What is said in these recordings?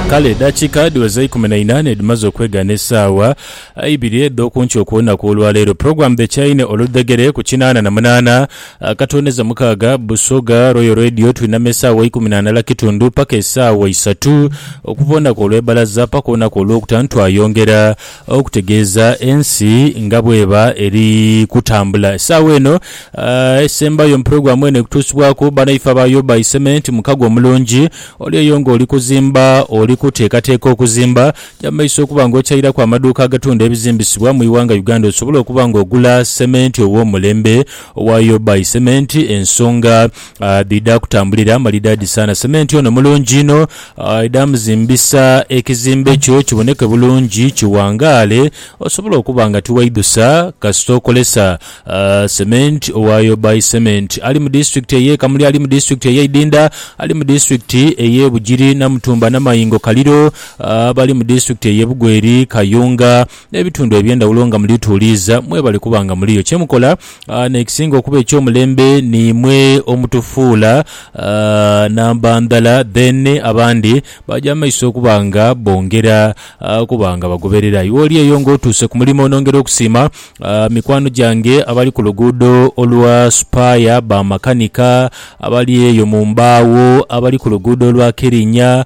Kale edhakiika dhiweze eikumi na ina n'edhimaze okwegaana esaawa ibiri edh'okunkyo okw'olunaku olwaleero, Program The Chaine oludhegere ku kinaana na munaana akatooneza mukaaga, Busoga Royal Radio twinama esaawa eikumi na ndala kitundu paka esaawa isatu okuva olunaku olw'ebbalaza paka olunaku olw'okutaanu twayongera Okutegeeza ensi nga bw'eba eri kutambula. Essaawa eno esembayo mu pulogulaamu eno ekutuusibwaku banaife abayooba iseme nti mukago omulungi oli eyo ng'oli kuzimba, oli kuteekateeka okuzimba, ja mu maiso okuba ng'okyairaku amaduuka agatunda ebizimbisibwa mu ighanga Uganda osobole okuba ng'ogula sementi ow'omulembe owa Yooba Iseme nti ensonga Ah, dhidha kutambulira malidaadi sana. Sementi ono mulungi inho. Ah, idha muzimbisa ekizimbe kyo kiboneke bulungi, kiwangaale, osobole okuba nga tiwaidhusa kasita okolesa ah, sementi owa Yobai Cement. Ali mu disitulikiti ey'e Kamuli, ali mu disitulikiti ey'e Idinda, ali mu disitulikiti ey'e Bugiri, Namutumba, Namayingo, Kaliro, ah, abali mu disitulikiti ey'e Bugweri, Kayunga, n'ebitundu eby'endhawulo nga mulituuliiza mwebale kuba nga muliyo. Kye mukola n'ekisinga okuba eky'omulembe niimwe omutufuula namba ndhala then abandi baja mu maiso okuba nga bongera okuba nga bagoberera. Iwe oli eyo ng'otuuse ku mulimo nongera okusiima mikwano gyange abali ku luguudo olwa Supaya, bamakanika abali eyo mu mbaawo, abali ku luguudo olwa Kirinya,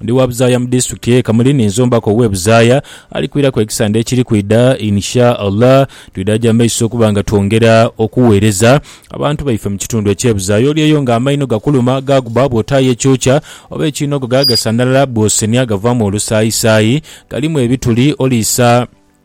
Ndi wa buzaaya mu Disitulikiti ye Kamuli ni nzombaku owe buzaaya ali kwiraku ekisande ekiri kwidha in sha Allah. Twidha gya maiso okuba nga twongera okuweereza abantu baife mu kitundu ekye buzaaya. Oli eyo nga amaino gakuluma, gaaguba bw'otaayo ekyokya oba ekiinogo gaaga sanhalala bw'osenhya gavaamu olusaayisaayi. Galimu ebituli, oliisa.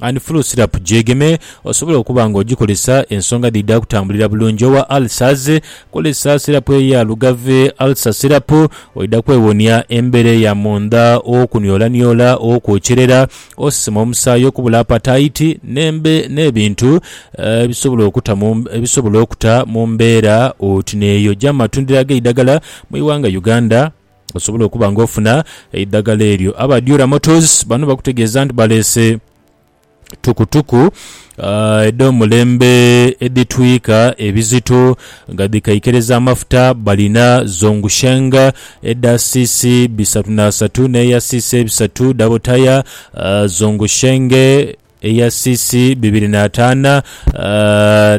and flu syrup gyegeme osobole okuba nga ogikozesa ensonga dhidha kutambulira bulungi. Owa ulcers, kozesa syrup eya Lugave ulcer syrup oidha kwewonia embeera eya mundha, okuniolaniola, okwokyerera, osesema omusaayi, okubula apatayiti n'embe n'ebintu ebisobola okuta mu ebisobola okuta mu mbeera oti n'eyo. Gya mu matundiro ag'eidhagala mu ighanga Uganda. osobole okuba nga ofuna eidhagala eryo. Aba Dura Motors bano bakutegeeza nti baleese tukutuku ah, edh'omulembe edhitwika ebizito nga dhikaikiriza amafuta. Balina Zhongsheng edha cc bisatu n'asatu n'eya cc ebisatu, double tyre ah, Zhongsheng eya cc bibiri n'ataana ah,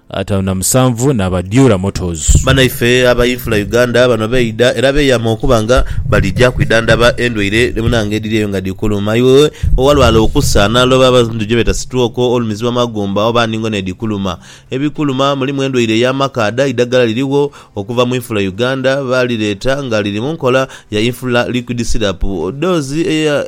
Ataanu na musanvu ni Abadiura Motors. Banaife aba Infula Uganda bano beidha era beyama okuba nga balija kwidhandhaba endwaire munange edhiri eyo nga dhikuluma iwe owalwala okusa naloba oba endhuki gyebeta sitwoko, olumizi wamagumba oba ndhingo nedhikuluma. Ebikuluma mulimu endwaire eya makaadha, eidhagala lirigho okuva mu Infula Uganda balireeta nga liri munkola ya Infula Liquid Syrup doozi eya.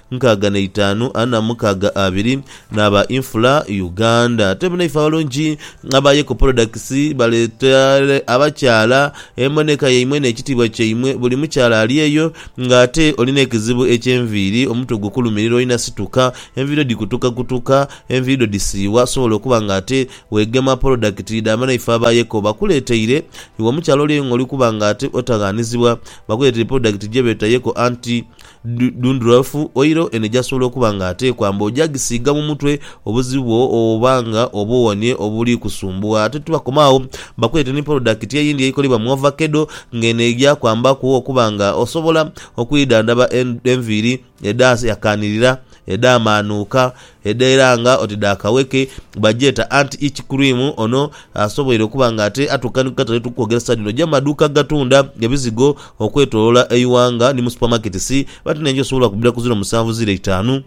Nkaaga na itaanu ana mukaaga abiri n'aba Infula Uganda. Ate bnaife abalungi aba Yeko Products baleetere abakyala emboneka yaimwe n'ekitiibwa kyaimwe. Buli mukyala ali eyo nga ate oli n'ekizibu eky'enviiri, omutwe gukulumirira olina situka, enviiri dho dhikutukakutuka, enviiri dho dhisiiwa, sobola okuba nga ate weegema polodakiti dha banaife aba Yeko. Bakuleeteire, iwe omukyala oli eyo ng'oli kuba nga ate otaghanizibwa, bakuleeteire polodakiti gye beeta Yeko Anti. Dhundhurafu, oilo eno gyasobola okuba nga ate kwamba ogyagisiiga mu mutwe obuzibu bwo oba nga obuwonie obuli kusumbuwa. Ate tibakoma agho, bakuleete ni polodakiti eyindi eikolebwa mu ovakedo nga eno eja kwambaku okuba nga osobola okwidhandhaba enviiri edhayakaanirira, edhamaanuuka, Edheera nga oti dha kaweke, bagyeta anti ice cream. Ono asoboire okuba nga ate atuuka ni ku katale etukwogeresa dhino gya maduuka agatunda ebizigo okwetolola eighanga ni mu supermarkets but n'enju esobola okubira ku ziro musanvu ziro eitaanu,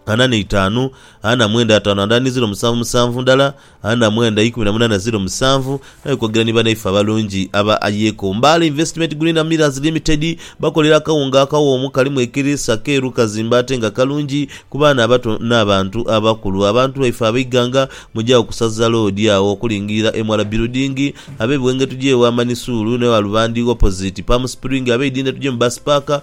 ana n'eitaanu, ana mwenda ataanu and ani ziro musanvu musanvu ndala Ana mwenda ikumi na munana ziro musanvu Naye kwogerera ni banaife abalungi aba Ayeko. Mbaale Investment Green and Millers Limited bakolera akawunga akawoomu kalimu ekiriisa, keeru, kazimbe ate nga kalungi ku baana abato n'abantu abakulu. Abantu baife ab'eighanga muje agho ku Sazza Road agho okulingirira Emwala Building, ab'e Bwenge tuje ewa Manisuulu n'e Walubandhi opposite Palm Spring, ab'e Idinda tuje mu Bus Park,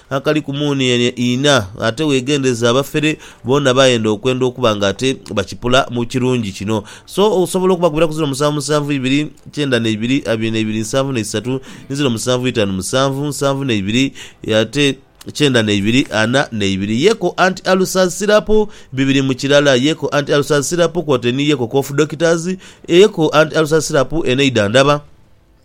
akali ku muuni ene ina, ate wegendereze abafere boona bayenda okwenda okuba nga ate bakipula mu kirungi kino. So osobola okubakubira ku ziro musanvu musanvu ibiri, kyenda na ibiri, abiri na ibiri, nsanvu na isatu, ni ziro musanvu itanu musanvu, nsanvu na ibiri, ate kyenda na ibiri, ana na ibiri. Yeko anti Alusa's Syrup, bibiri mu kirala, Yeko anti Alusa's Syrup kwotaire ni Yeko Cough Doctors, Yeko anti Alusa's Syrup eno eidhandhaba.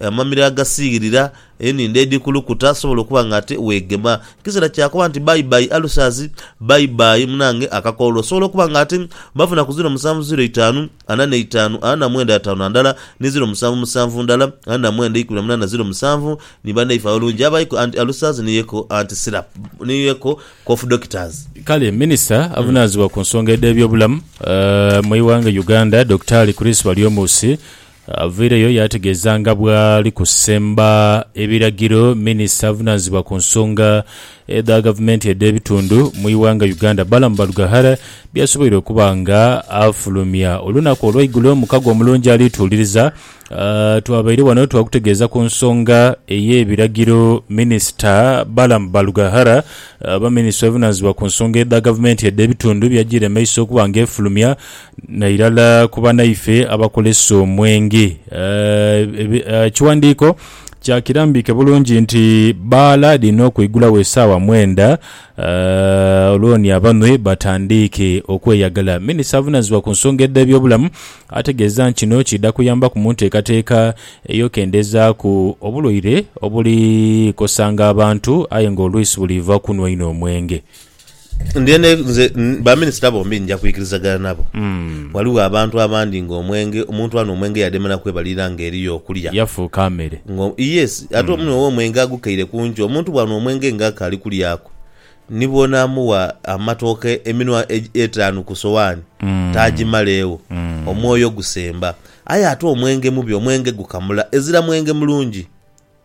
Amamiro agasiighirira, Enindho edhikulukuta asobola okuba nga ate weegema. Kiseera kya kuba nti bye bye ulcers, bye bye munange akakoolo. Osobola okuba nga ate bafuna ku ziro musanvu ziro itaanu ana n'eitaanu ana na mwenda ataanu na ndala ni ziro musanvu musanvu ndala ana na mwenda ikumi na munaana ziro musanvu ni banaife abalungi abaiku anti ulcers ni eco anti syrup ni eco cough doctors. Kale Minisita avunaanzibwa ku nsonga edh'ebyobulamu mu ighanga Uganda Dokitaali Chris Baryomunsi Avaireyo yaategeeza nga bw'ali kusemba ebiragiro minisita avunaanyizibwa ku nsonga edha gavumenti edh'ebitundu mu ighanga Uganda, Balaam Barugahara byasoboire okuba nga afulumya. Olunaku olwaigulo mukago omulungi ali tuwuliriza, twabaire wano twakutegeeza ku nsonga ey'ebiragiro minisita Balaam Barugahara oba minisita avunaanyizibwa ku nsonga edha gavumenti edh'ebitundu byajiire mu maiso okuba nga efulumya. Nairala ku banaife abakozesa omwenge. Ekiwandiiko kyakirambiike bulungi nti bbaala lirina okweigulagho esaawa mwenda olwo ni abanhwi batandiike okweyagala. Minisita avunanizibwa ku nsonga edh'ebyobulamu ategeeza nti kino kiidha kuyambaku mu nteekateeka ey'okendezaaku obulwaire obuli kosanga abantu aye nga olwisi buliiva kunhwa inho omwenge. Ndhenda nze baminisita bombi nja kwikirizagana nabo. Hmm. Ghaligho abantu abandi nga omwenge, omuntu anwa omwenge yademera kwebalira nga eriyo okulya. Yafuuka mere. Nga yes, ate omunwe hmm. womwenge agukaire kungi. Omuntu bwanwa omwenge nga akali kulyaku, ni bwonamuwa amatooke eminwa etaanu ku sowani hmm. tagimaleegho, hmm. omwoyo gusemba. Aye ate omwenge mubi, omwenge gukamula, ezira mwenge mulungi.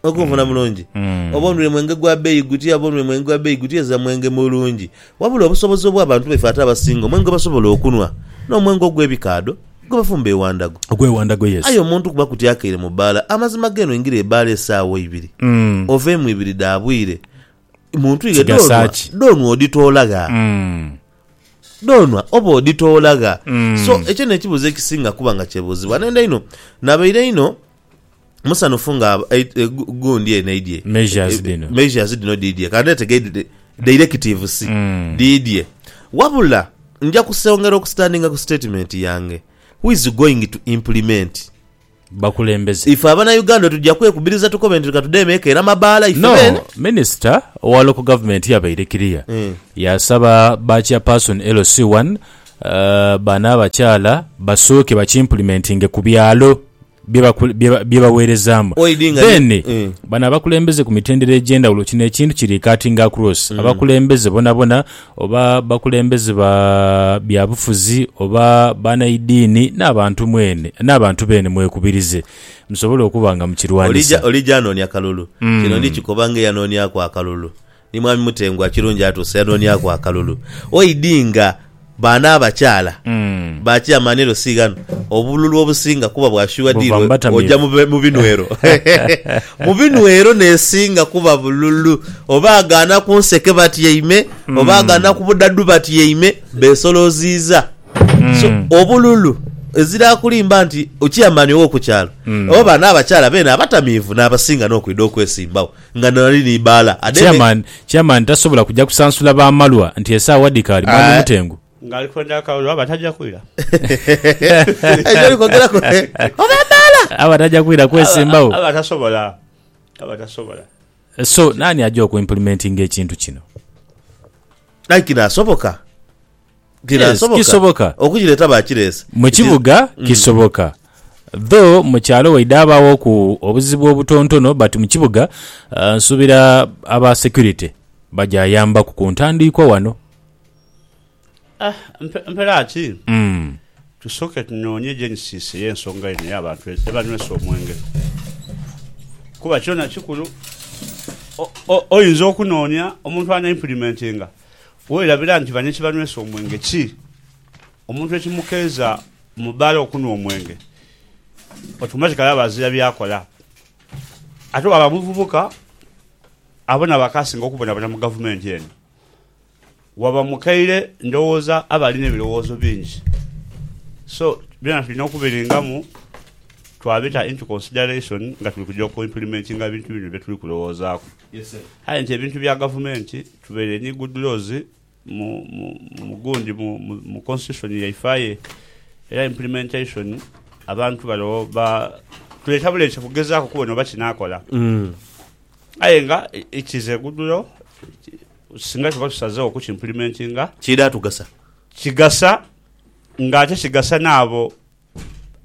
Okunfuna mulungi. Oba onwire mwenge gwa beeyi gutya, oba onwire mwenge gwa beeyi gutya, ezira mwenge mulungi. Wabula obusobozi obw'abantu baife ate abasinga omwenge gwebasobola okunwa n'omwenge ogw'ebikaadho gwebafumba ewandhago. Ogw'ewandhago, yes. Aye omuntu kuba kuti akeire mu bbaala, amazima g'eno oingira ebbaala esaawa ibiri oveemu ibiri dha bwire, mu ntwighe dh'onwa, dh'onwa odhitoola gha? Dh'onwa oba odhitoola gha? So, ekyo n'ekibuuzo ekisinga kuba nga kyebuuzibwa. N'endha inho, nabaire inho musanhufu nga gundi eno eidhie measures dhino dhiidhie kandhetege directive si mm. dhiidhie wabula nja kusongera okusitandinga ku statement yange who is going to implement bakulembeze ife abana uganda tujja kwekubiriza tukobe nti reka tude emeeka era mabaala ife no, bene minisita owa local government yabaire kiriya mm. yasaba ba chairperson lc1 uh, eh, bana abakyala basooke bakimplementinge ku byalo bye bagheerezaamu. Then bano abakulembeze ku mitendera egy'endhawulo kino ekintu kiri cutting across mm. abakulembeze bonabona oba bakulembeze ba byabufuzi oba banaidiini n'abantu mwene n'abantu beene mwekubirize musobole okuba nga mukirwanyisa. Olija anoonia kalulu mm. kino ndikikoba nga eyanooniaku akalulu Ni Mwami Mutengu akirungi atuuse yanooniaku akalulu. Oidi nga baana abakyala ba Chairman LC ghano, obululu obusinga kuba bwa sure Buva deal mu oja batamiivu. mu binwero. Mu binwero n'esinga kuba bululu. Oba agaana ku nseke batyaime, oba agaana ku budhadhu batyaime, beesoloziiza. So, obululu ezira akulimba nti Chairman ow'oku kyalo oba baana abakyala beene abatamiivu n'abasinga n'okwidha okwesimbagho. Nga nali ni baala ade me. Chairman chairman tasobola kuja kusansula ba malwa nti esawa dhikaali mwami mutengu. Nga ali kwenda akalulu aba taja kwira. Aye byoli kwogera ku oba baala. Aba taja kwira kwesimbagho. Aba tasobola aba tasobola. So nani aja oku implementinga ekintu kino. Aye kino asoboka. Yes, kisoboka. Okukireta bakirese. Mu kibuga kisoboka. Though mu kyalo waidha abaaghoku obuzibu obutontono but mu kibuga ah, nsuubira aba security bagyayambaku ku ntandiikwa wano. Ah, mpe- mpela ki? Mm. Tusooke tunoonye Genesis y'ensonga eno ey'abantu e- ebanywesa omwenge. Kuba kyona kikulu. O- o- oyinza okunoonia omuntu ana implimentinga. Werabira nti bano ekibanywesa omwenge ki? Omuntu ekimukeeza mu bbaala okunhwa omwenge, otomatikali aba azira by'akola. Ate bw'aba muvubuka, abo nabo akaasinga okubonabona mu gavumenti eno. Waba mukaire ndowooza aba alina ebirowoozo bingi. So, byona tulina okubiringamu twabita into consideration nga tuli kuja oku implimentinga ebintu bino bye tuli kulowoozaaku. Aye nti ebintu bya gavumenti. Tubaire ni good laws mu mu gundi mu mu constitution yaife aye era implementation abantu bano ba tuleta buleta kugezaaku kubona oba kinakola aye nga it is a good law singa tuba tusazegho okuki implementinga Kiidha tugasa. kigasa nga ate kigasa naabo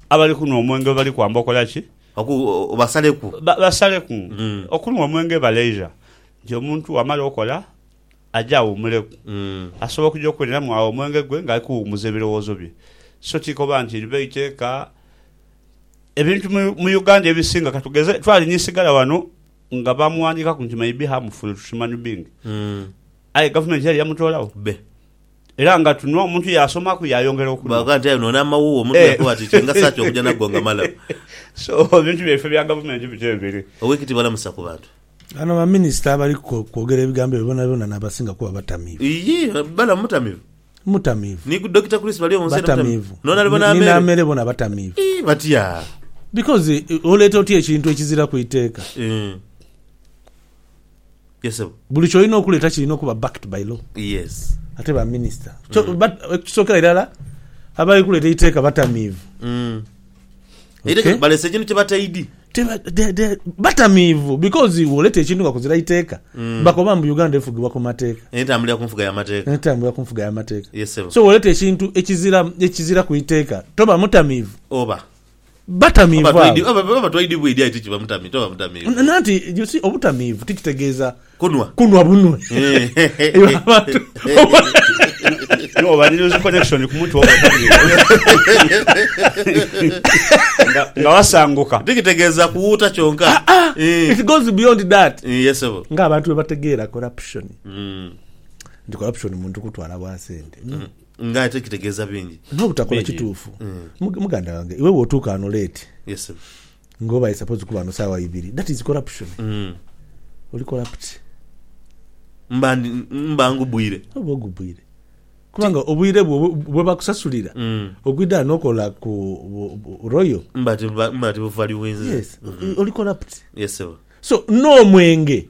Abali kunhwa omwenge bwe bali kwamba okola ki? Oku, obasaleku. Ba, basaleku. Mm. Okunhwa omwenge baleija nti omuntu bw'amala okola, aje awumuleku. Mm. Asobola okuja okuweneramu agho omwenge gwe ng'ali kuwumuza ebirowoozo bye. So ti koba nti liba iteeka. Ebintu mu, mu Uganda ebisinga, ka tugeze, twalinya eisigala ghano nga baamughandiikaku nti may be harmful to human being. Mm. Aye Gavumenti yali yamutoolagho? Bbe. Era nga tuno omuntu yaasomaku yaayongera okunhwa. Bwa ghandi aye noona amawuuwa omuntu yaakooba ati kingasa ki okuja nago nga malamu? So ebintu byaife bya gavumenti bityo biri. Oweek Tibalamusa ku bantu. Bano ba minister abali kwogera ebigambo ebyo bonabyona nabasinga kuba batamiivu. Iyii balamu mutamivu. Mutamiivu. Ni ku Dokita Chris bali omunsi yena mutamiivu. Noona ali bona ameere. Ni n'ameere bona batamiivu. Iyii batya. Because oleeta otya ekintu ekiziraku iteeka. Eeh. Yes sebo. Buli kyolina okuleta kilina okuba backed by law. Yes. Ate ba minister kyo ba ekisokera irala abali kuleta eiteka batamiivu. Eiteka balese ekintu kye bataidi. Teba de de batamiivu because woleta ekintu nga kuzira iteka bakoba mbu Uganda efugibwa ku mateka. Entambulira ku nfuga ya mateka. Entambulira ku nfuga ya mateka. Yes sebo. So woleta ekintu ekizira ekizira ku iteka toba mutamiivu. Oba. batamiivu abo. Oba twaidibwa edyayi ti kiba mutamiivu. Nanti, you see, obutamiivu ti kitegeeza kunwa bunwe. Oba ni loose connection ku mutwe oba otamiivu. Nga wasanguka. Ti kitegeeza kuwuuta kyonka. It goes beyond that. Nga abantu bwe bategeera corruption, nti corruption muntu kutwala bwa sente. Nga ate kitegeeza bingi. N'obutakola Bingi. kituufu. Mug, muganda wange, iwe bw'otuuka ghano late, Yes, sir. nga oba i suppose kuba ghano saawa ibiri, that is corruption. Oli corrupt. Mba ndi, mba ngubwire. Oba ogubwire. Kubanga obwire bwo bwe, bwe bakusasulira, ogwidha ghano okola ku bu, bu, Royal. Mba tibuba, mba tibuvaluinze. Yes. Oli corrupt. Yes, sebo. So, n'omwenge.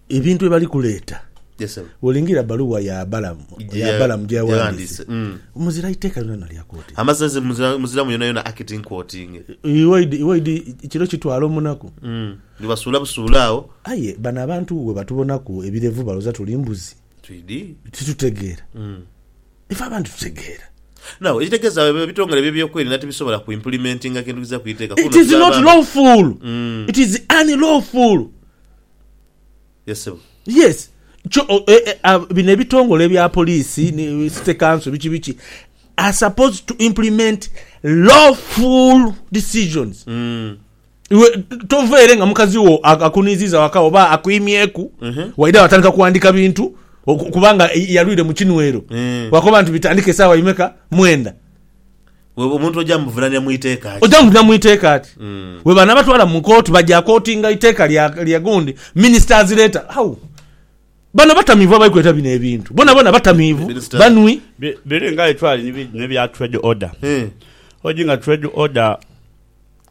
Ebintu bye bali kuleeta. Yes, sebo. Bw'olingirira bbaluwa ya Balamu, Gye ya ya- Balamu gye gye yaghandiise, yaghandiise, mm. muzira iteeka lyonalyoona lya kooti. Amasasi muzira- muziramu yonayona akiti nkwotinge. Iwaidi, iwaidi kiro kitwala omunaku. Mm. Ni basuula busuula agho. Aye bano abantu bwe batubonaku ebirevu balowooza tuli mbuzi. Twidi. Titutegeera. Mm. Ife abantu tutegeera. Now, ekitegeeza eb- ebitongole by'ebyokwerinda tibisobola ku implimentinga kintu kiziira ku iteeka kuno It is tuli not abantu. lawful. Mm. It is unlawful. ye ssebo. Yes kyo bino ebitongole ebya police ni city council biki biki are supposed to implement lawful decisions iwe tova ere nga mukazi wo akuniziza waka oba akwimyeku waidha watandika kuwandika bintu kubanga yalwire mukinwero wakoba nti bitandike esawa imeka mwenda Wewe omuntu oja muvunaanira mu iteeka ki? Oja muvunaanira mu iteeka ki? Bwebanabatwala mu kooti baja kootinga iteeka lya gundi minisita azireeta. Hau! Bano batamiivu abali kuleeta bino ebintu. Boonaboona batamiivu, banwi. Biri nga aye twali ni bino ebya trade order. Odi nga trade order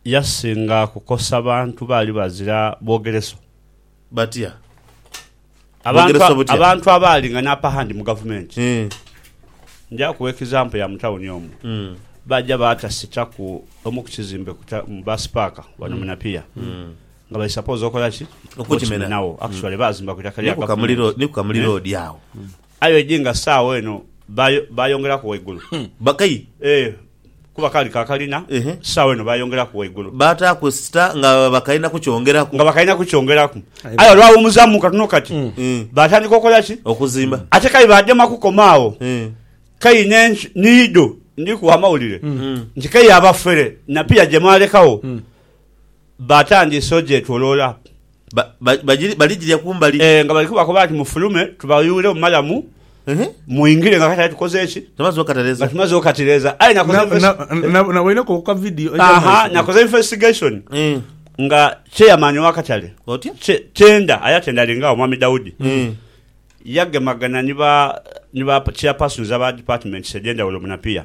yasinga kukosa bantu baali bazira bwogereso. batya? Abantu, Bogeresa butya? abantu abaali nga n'apahandi mu gavumenti Eh, nja kuwa ekizampo ya mu tawuni omu mm, baja baatasitaku omu ku kizimbe ku ta- mu baasi paaka wano mu Napier nga bali sapoozi okola ki Okukimena. Okukimenagho. actually baazimba ku itaka lya ni ku Kamuli gavumenti Road- ni ku Kamuli Eh? Road agho Aye oidhi nga saagho eno baayongeraku waigulu. Bakayi? Ee, kuba kaali ka kalina, saagho eno baayongeraku waigulu. Baataaku esita nga bakalina kukyongeraku. Nga bakalina kukyongeraku. Aye olwaghumuzaamu katono kati, baatandika okola ki? Okuzimba. Ate k'aye baadema kukoma agho. K'aye niidho ndi kuwa amawulire nti k'aye abafere na pia gye mwalekagho, baatandise ogyetoloola. baligirya kumbali. Ee, nga bali kubakoba nti, Mufulume tubawuule mu malamu, mwingire nga katale tukoze ki? Nga tumaze okatireeza. Aye naboineku ku ka vidiyo. Aha, nakoze investigation nga chairman wa katale tenda, aye atenda ali nga Omwami Daudi, yagemagana ni ba chairpersons aba departments edhendawulo mu Napier.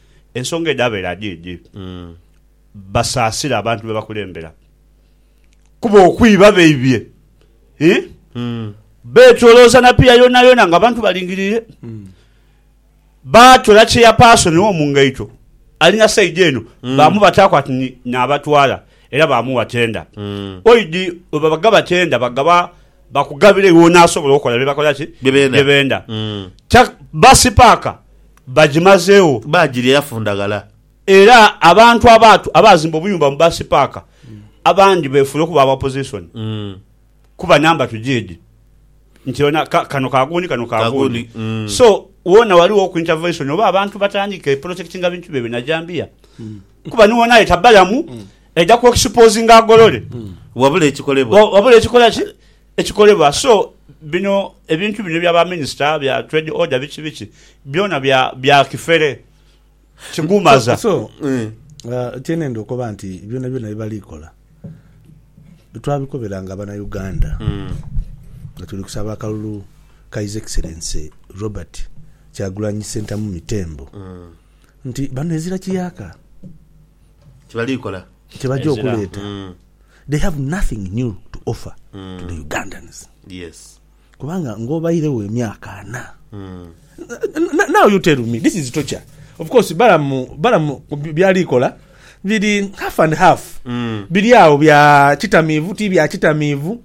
Ensonga edhabeera dh'edhi, basaasira abantu be bakulembera kuba okwiba baibye ii beetolooza na piya yoonayoona ng'abantu balingiriire. Baatola cheyapaasoni wo mu ngaito alina sayidi eno baamubataaku ati ni naabatwala era baamuwa tenda. Oidi bwe babagaba tenda bagaba bakugabira ewoonaasobola okola bye bakola ki? Bye benda. Bye benda. Basi paaka Bagimazeegho. Baagirya yafundaghala. Era abantu abaatu abaazimba obuyumba mu Bus Park abandi beefuula okuba aba Opposition kuba namba tujiidhi nti yona ka, kano ka gundi kano ka Ka gundi. gundi, mm. So, woona ghaligho oku intervention oba abantu batandike protectinga bintu byaibwe na jambiya kuba ni woona aye tabalamu, aidha ku exposinga agolole. Wabula ekikolebwa. Wa- Wabula ekikola ki? Ekikolebwa so bino ebintu bino ebya ba minister bya trade order biki biki byona bya bya kifere kigumaza. So kyenenda okoba nti byona byona byebali kola twabikobera nga abana Uganda nga tuli kusaba akalulu ka his excellency Robert kyagulanyi sentamu mitembo nti bano ezira kiyaka kyebali kola kyebaja okuleta. they have nothing new to offer mm. to the mm. Ugandans yes kubanga ngobairewo emyaka ana mm. now you tell me this is torture of course balamu balamu byalikola biri half and half mm. biri awo bya kitamiivu ti bya kitamiivu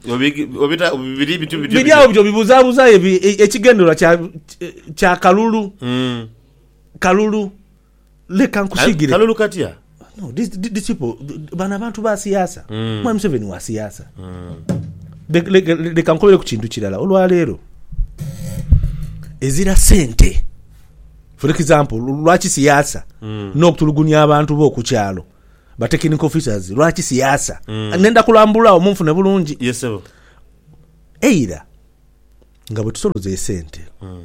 biri awo bityo bibuzabuza e, ekigendererwa kya kalulu mm. kalulu Leka nkusigire. Kalulu katya? No, these, th- these people, th- bano abantu ba siyaasa. Mm. Mwami Museveni wa siyaasa. Le- le- le- Leka nkubere ku kintu kirala. Olwaleero, ezira sente. For example, lwaki siyaasa Mm. n'okutulugunya abantu bo ku kyalo ba technical officers lwaki siyaasa Mm. nenda kulambula awo munfune bulungi Yes, sebo. eira nga bwe tusoloza esente Mm.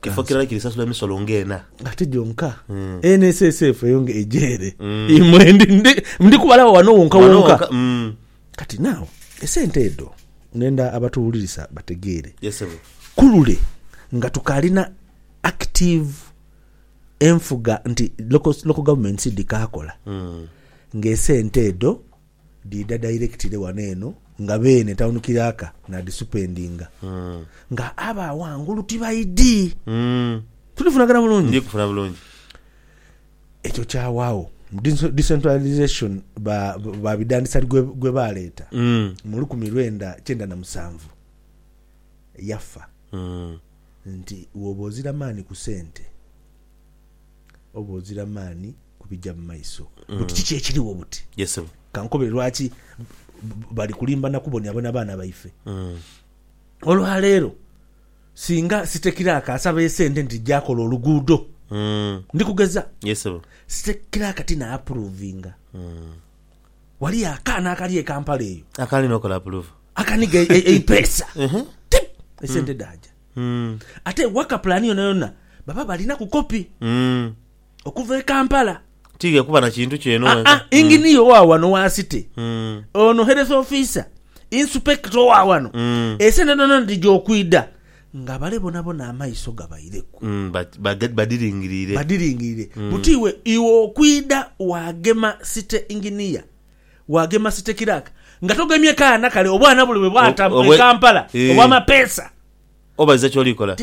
Kifo kirala kirisasula emisolo nga ena. Ate gyonka NSSF eyo nga eja ere, imwe ndi kubalagho ghano wonka wonka. Kati now esente edho nenda abatuwulirisa bategeere ku lule nga tukaalina active enfuga nti local governments dhikaakola, ng'esente edho Dhiidha dairekitire wano eno nga beene tawuni kiraaka naadhisupendinga nga abo aghangulu tibaidhi. Tuli kufunagana bulungi? Ndi kufuna bulungi. Ekyo kyawaagho decentralisation ba ba bidhandhisa gwe baaleeta mu lukumi lwenda kyenda na musanvu. Yafa nti woba ozira maani ku sente, oba ozira maani ku bija mu maiso. Buti kiki ekirigho buti? Yes, sebo. Ka nkobere lwaki bali kulimba na kubonabona baana baife. Olwa leero singa Sitekiraaka asaba esente nti ja kola oluguudo, ndi kugeza, Yes, sebo. Sitekiraaka ti na apuruvinga. Waliyo akaana akali e Kampala eyo Akaali n'okola apuluvu. akaniga e- e- eipeesa Ehe. Ti! esente dhaaja. Mm. Ate waka pulaani yonayona baba balinaku kopi. Mm. okuva e Kampala. Tiidhie kuba na kintu kyo eno wenka. Aa, Inginiya owa wano wa City, ono Health Officer, Insupekita owa wano, esente dhoona dhija okwidha nga bale bonabona amaiso gabaireku. Badhiringirire. Badhiringirire. Buti iwe, iwe okwidha waagema City Inginiya, waagema City Clerk, nga togemye kaana kale obwana buli bwe bwata e Kampala obw'amapeesa. Obaliza ky'oli kola.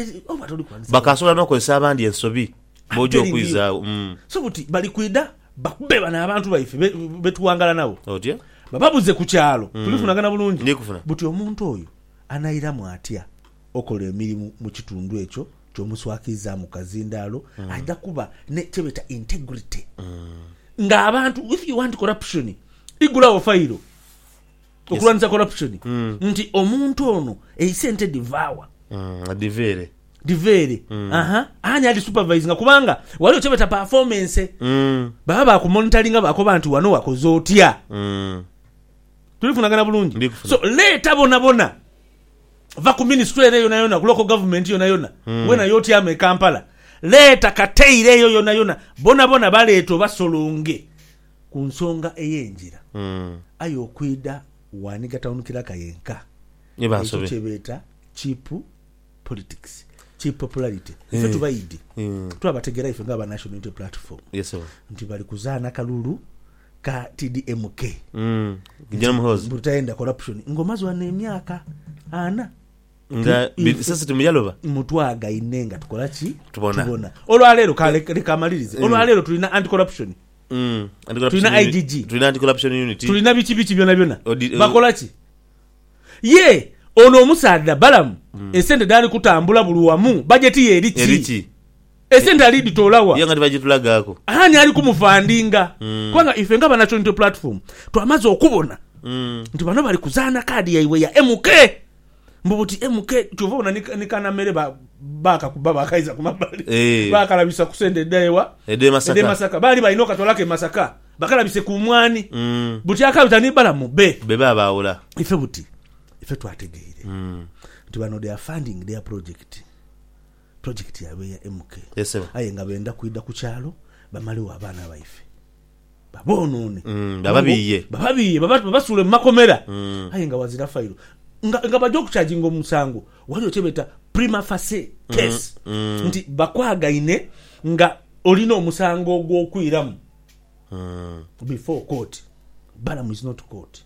Bakaasobola n'okozesa abandi ensobi b'oja okwizaagho. So buti bali kwidha bakube bano abantu baife be tuwangala nabo, bababuze ku kyalo. Tulifunagana bulungi buti omuntu oyo anairamu atya okola emirimu mu kitundu ekyo ky'omuswakiizaamu kazindaalo. Aidha kuba ni kye beeta integrity ng'abantu. If you want corruption, igulagho fayiro. okulwanisa corruption nti omuntu ono eisente dhiva wa? Mm, adhiva ere. Dhiva ere. Mm. Aha, ani adhisupervisinga kubanga waliwo kyebeta performance. Mm. Baba bakumonitoringa bakoba nti wano wakoze otya? Mm. Tulifunagana bulungi? Ndikufuna. So leeta bona bona va ku ministry ere yona yona ku local government yona yona mm. wena yotyama e Kampala leeta kateire eyo yona yona bona bona baleete obasolonge Ku nsonga ey'engira, aye okwidha ghani gatawunukira ka yenka. Ekyo kye beeta cheap politics, cheap popularity. Ife tubaidhi twabategera ife nga aba National Unity Platform nti bali kuzaana kalulu ka TDMK nti mbu tutaenda corruption nga omaze wano emyaka ana mbu twagaine nga tukola ki? Tubona. Olwaleero, ka leka mmalirize, olwaleero tulina anti-corruption. Tulina IGG. Tulina biki biki byonabyona. Bakola ki? Ye ono omusaadha Balamu esente dhaali kutambula buli wamu bajeti ye eri ki? Esente ali dhitoola wa? Ani ali kumufandinga? Kubanga ife nga Banacho Unity Platform twamaze okubona nti bano bali kuzaana kaadi yaibwe ya MK. Mbu buti MK kyova obona ni ni kana mere ba bakakuba bakaiza ku mabali Eeh. bakalabisa ku sente edha ewa Edhe e edhe Masaka. masaka baali balina okatwalaku e masaka bakalabise ku mwaani Uhmm. buti akabita ni balamu be. Be ba baawula. Ife buti ife twategeire Uhmm. nti bano they are funding their project. Pulojekiti yaabwe eya MK aye nga benda kwidha ku kyalo bamalegho abaana baife. Baboonoone, bababiiye, babasuule mu makomera aye nga ghazira failo nga baja okukyajinga omusango. Ghaligho kye beeta prima facie case nti bakwagaine nga olina omusango ogw'okwiramu before court. Balamu is not court.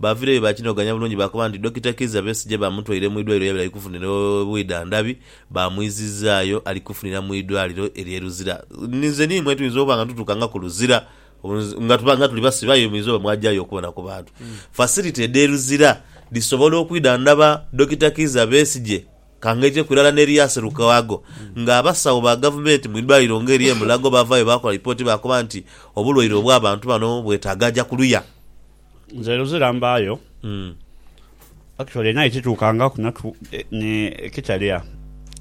Baavireyo baakinoganya bulungi baakoba nti Dokita Kizza Besigye baamutwaire mu idwaliro yabire ali kufunira obwidhandhabi, baamwizizaayo ali kufunira mu idwaliro ery'e Luzira. Ninze n'imwe tuyinza okuba nga tutuuka nga ku Luzira nga tuba nga tuli basibe aye muyinza oba mwajayo okubona ku bantu. Facility edh'e Luzira dhisobola okwidhandhaba Dokita Kizza Besigye ka ng'eiteku irala n'eryase Lukwago nga abasawo ba Gavumenti mu idwaliro nga ery'e Mulago baavaayo baakola lipooti baakoba nti obulwaire obw'abantu bano bwetaaga aja kuluya. Nze luzira mbaayo. Actually naye kituukangaku natu eh, ni Kitalya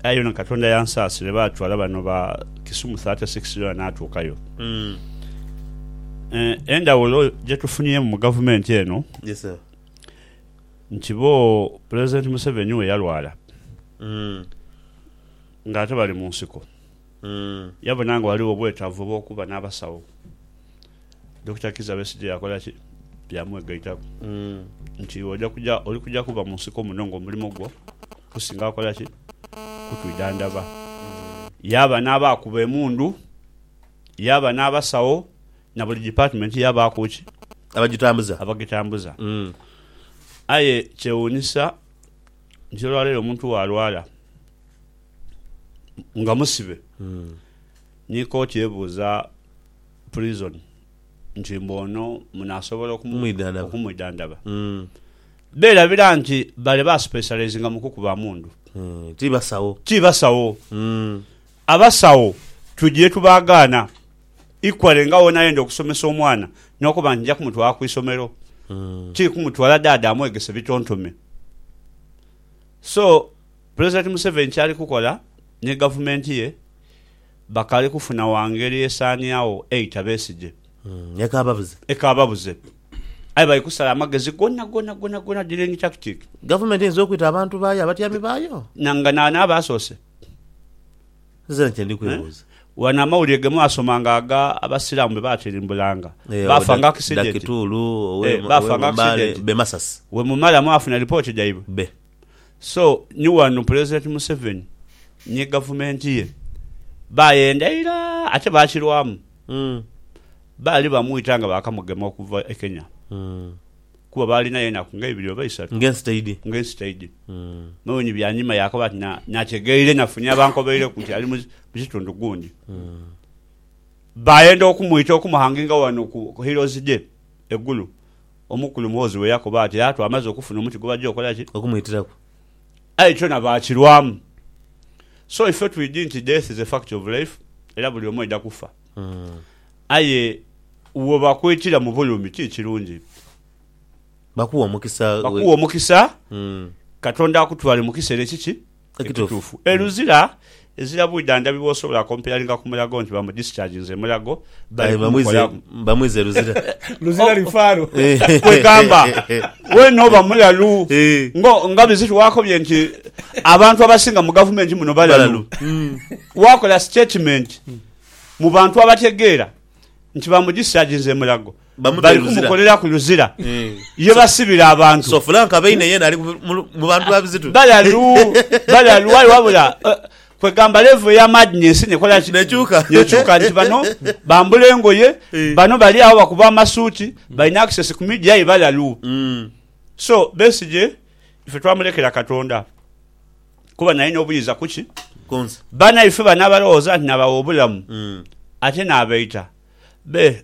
aye yona Katonda yansaasire baatwala bano ba Kisumu 36 yona naatuukayo. Eh, endhawulo gye tufunyeemu mu gavumenti eno Yes sir. nti bo Pulezidenti Museveni we yalwala ng'ate bali mu nsiko. Yabona nga ghaligho obwetaavu obw'okuba n'abasawo. Dokita Kizza Besigye yakola ki? Yaamwegaitaku nti, Iwe oja kuja, oli kuja kuba mu nsiko muno ng'omulimo gwo kusinga kukola ki? Kutwidhandhaba. Yaaba n'abaakuba emundu, yaaba n'abasawo, na buli dipatimenti yaabaaku ki? Abagitambuza. Abagitambuza. Aye kyewuunisa nti olwaleero omuntu bw'alwala. nga musibe ni kooti ebuuza prison nti mbu ono munasobola Okumwidhandaba. okumwidhandaba berabira nti bale ba specializinga mu kukuba amundu Mm, ti basawo. ti basawo Mm. abasawo tugire tubagaana equally nga wonayenda okusomesa omwana nokuba nti nja kumutwala ku isomero Mm. ti kumutwala daada amwegese bitontome so Pulezidenti Museveni kyali kukola ni gavumenti ye bakaali kufuna wa ngeri esaaniagho eita Besigye. Ekaababuze. Ekaababuze. Aye bali kusala amagezi gona gona gona gona dealing tactic. Gavumenti eyinza okwita abantu baayo abatyami baayo? Na nga naani aba asoose? Nze kye ndi kwebuuza. Wano amawulire ge mwasomanga aga Abasiraamu be baatirimbulanga, baafa nga akisidenti. Dakituulu, owe Mbale, be Masasi. Bwe mumala mwafuna lipooti dhaibwe? Be. So ni ghano Pulezidenti Museveni ni Gavumenti ye baayenda ira ate baakirwamu. Baali bamwita nga baakamugema okuva e Kenya kuba baalinayo enaku nga ibiri oba isatu ng'ensi taidhi. Muwinyi byanyima yaakaba ati nategeire nafunye abankobeireku nti ali mu kitundu gundi. Baayenda okumwita okumuhanginga ghano ku Heroes Day e Gulu Omukulu Muhoozi bwe yakoba ati, Aa, twamaze okufuna omuti gwe bajja okola ki? Okumwitiraku. Aye kyona baakirwamu. So ife twidi nti death is a fact of life era buli omu aidha kufa. Aye wo bakwitira mu bulumi ti kirungi. Bakuwa omukisa. Bakuwa omukisa. Katonda akutwale mu kisera ekiki? Ekituufu. E Luzira ezira bwidha ndhabi bwosobola comparinga ku Mulago nti bamu discharginze Mulago bali kumukolamu. Bamwiza e Luzira. Luzira oh. lifaro. Kwegamba wena oba mulalu ngo nga biziti wakobye nti abantu abasinga mu gavumenti muno balalu. Hmm. Wakola statement mu bantu abategeera nti bamu discharginze Mulago bali kumukoleraku luzira eh. ye basibira abantu so fulanka beine yena ali mu bantu babizitu balalu balalu wali wabula eh, kwegamba levo ya madness nekola nekyuka nekyuka nti bano bambula engoye eh. bano bali awo bakuba amasuuti balina access ku media ye balalu mm. so besije ife twamulekera katonda kuba naye nobuyiza kuki bana ife bana balowooza nti nabawa obulamu mm. ate nabaita be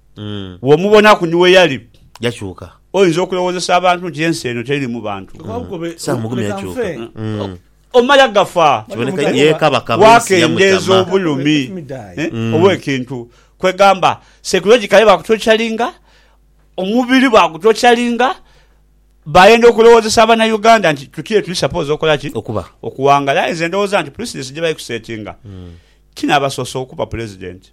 Bw'omubonaku ni we yali, yakyuka. Oyinza okulowoozesa abantu nti ensi eno teririmu bantu. Sam Mugume yakyuka. Omala gafa. Kiboneka ye Kabaka b'ensi yamukyama. Waakendeeza obulumi obw'ekintu. Kwegamba, psychologically baakutocalinga, omubiri baagutocalinga, baayenda okulowoozesa Abanauganda nti tuti ye tuli suppose okola ki? Okuba. Okuwangala. Aye nze ndowooza nti precedence gye baali kusetinga, kinaabasoosa okuba Pulezidenti.